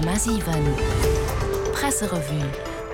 100,7 Presserevue.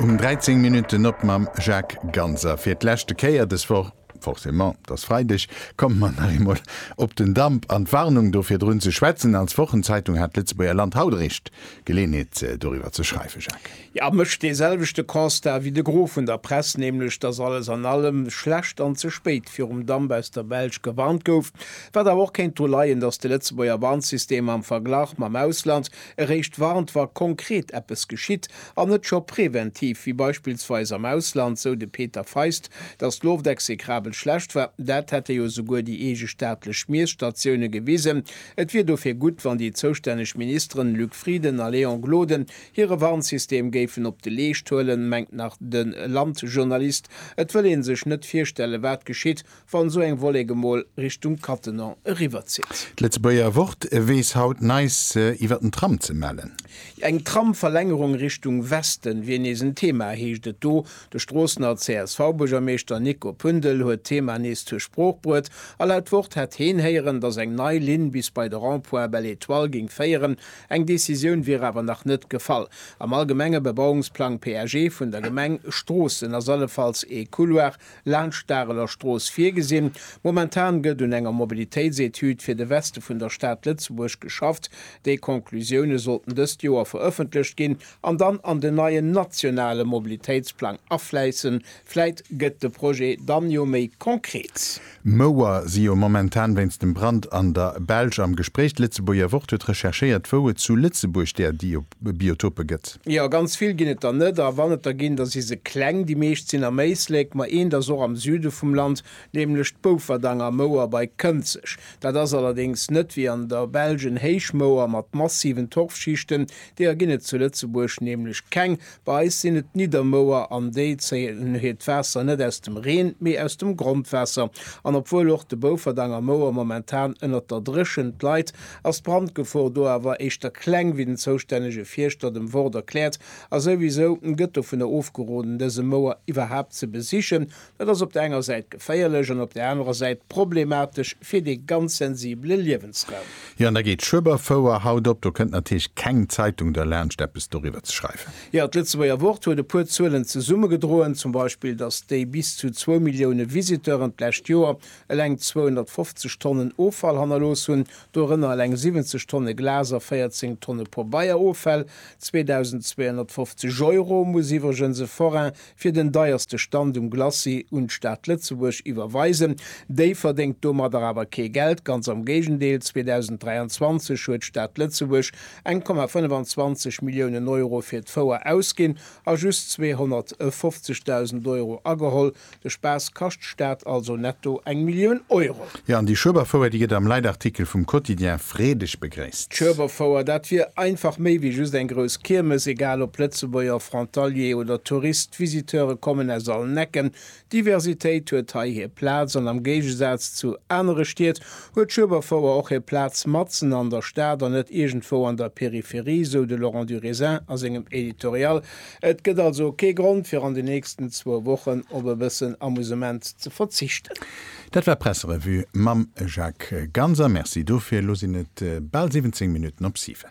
Um 13 Minutten op mam Jacques Ganser. Fir d'leschte Kéier des Woch, forcément, t'ass Freideg, komme mer nach eemol op den Damp an d'Warnung do virdrun ze schwätzen. Als Wochenzeitung hat d'Lëtzebuerger Land haut eréischt Geleeënheet doriwwer ze schreiwen, Jacques. Jo, mécht dee selwechte Constat wéi de Gros vun der Press, nämlech dass alles an allem schlecht an ze spéit virum Damp aus der Belsch gewarnt gouf, wat awer och kéint dru leien, dass de Lëtzebuerger Warnsystem am Verglach mam Ausland eréischt warnt, wa konkret eppes geschitt an net scho preventiv, wéi beispillsweis am Ausland, sou de Peter Feist, dass d'Loft execrabel schlecht war. Dat hätte jo souguer déi eege staatlech Miesstatioune gewisen. Et wier dofir gutt, wann déi zoustänneg Ministeren Luc Frieden a Léon Gloden Hire Warnsystem géif en op de Leescht huelen, mengt nach de Landjournalist. Et wëll ee sech net virstellen, wat geschitt, wann esou eng Wollek emol Richtung Cattenom eriwwerzitt. D'Lëtzebuerger Wort weess haut neis iwwer den Tram ze mellen. Eng Tramverlängerung Richtung Westen wier nees en Thema, heescht et do. De Stroossener CSV-Buergermeeschter Nico Pündel huet d'Thema nees zur Sprooch bruet. A laut Wort hätt heen héieren, datt eng nei Linn bis bei de Rond-point Belle-Etoile géing féieren, Eng Decisioun wier awer nach net gefall. Am allgemenge Bebauungsplang, PAG, vun der Gemeng Stroossen ass allefalls ee Couloir laanscht d'Areler Strooss virgesinn. Momentan gëtt un enger Mobilitéitsetüd fir de Weste vun der Stad Lëtzebuerg geschafft. Déi Conclusioune sollten dëst Joer verëffentlecht ginn an dann an den neien nationale Mobilitéitsplang afläissen, Vläit gëtt de Projet dann jo méi konkret. D'Mouer si jo momentan wéinst dem Brand an der Belsch am Gespréich. D'Lëtzebuerger Wort huet recherchéiert, wou et zu Lëtzebuerg där Biotope gëtt. Jo, ganz vill ginn et der net. A wann et der ginn, da si se kleng. Déi meescht sinn am Éislek, ma eent ass och am Süde vum Land, nämlech d'Boufferdanger Mouer bei Kënzeg. Dat ass allerdéngs net wéi an der Belsch en Héichmouer mat massiven Torfschichten. Deeër ginn et zu Lëtzebuerg nämlech keng, Bei eis sinn et d'Niddermouer an déi zéien hiert Waasser net aus dem Reen, mee aus dem Grondwaasser. An obwuel och de Bouferdang a Mouer momentan ënnert der Dréchent leit, ass d'Brandgefor do awer éischter kleng, wéi den zoustännege Fierschter dem Wort erkläert. A souwisou gëtt dovunner ofgeroden dëse Mouer iwwerhaapt ze besichen, Dat ass op der enger Säit geféierlech an op der anerer Säit problematesch fir dee ganz sensibele Liewensraum. Jo, an da geet d'Schueberfouer haut op. Do kënnt natierlech keng Zeitung derlaanscht, eppes doriwwer ze schreiwen. Jo, d'Lëtzebuerger Wort huet e puer Zuelen zesummegedroen, zum Beispill, datt déi bis zu zwou Millioune Visiteuren d'lescht Joer eleng 250 Tonnen Offall hannerlooss hunn, dorënner eleng 70 Tonne Glas a 14 Tonne Pobeieroffäll. 2.250 Euro muss iwwregens e Forain fir den deierste Stand um Glacis un d'Stad Lëtzebuerg iwwerweisen. Déi verdéngt domadder awer kee Geld, ganz am Géigendeel, 2023 huet d'Stad Lëtzebuerg eng Komma 25 Milliounen Euro fir d'Fouer ausginn a just 250.000 Euro ageholl. De Spaass kascht d'Stad also netto eng Millioun Euro. Jo, an déi Schueberfouer, déi gëtt am Leitartikel vum Quotidien freedeg begréisst. D'Schueberfouer, dat wier einfach méi wéi just eng grouss Kiermes, egal ob Lëtzebuerger, Frontalier oder Tourist, d'Visiteure kommen aus allen Ecken. D'Diversitéit huet hei hir Plaz an am Géigesaz zu anere Stied huet d'Schueberfouer och hir Plaz matzen an der Stad an net iergendwou an der Peripherie, sou de Laurent Durisin a sengem Editorial. Et gëtt also kee Grond, fir an den nächsten zwou Wochen op e bëssen Amusement ze verzichten. Dat war d'Presserevue mam Jacques Ganser. Merci dofir. Elo sinn et bal 17 Minutten op 7.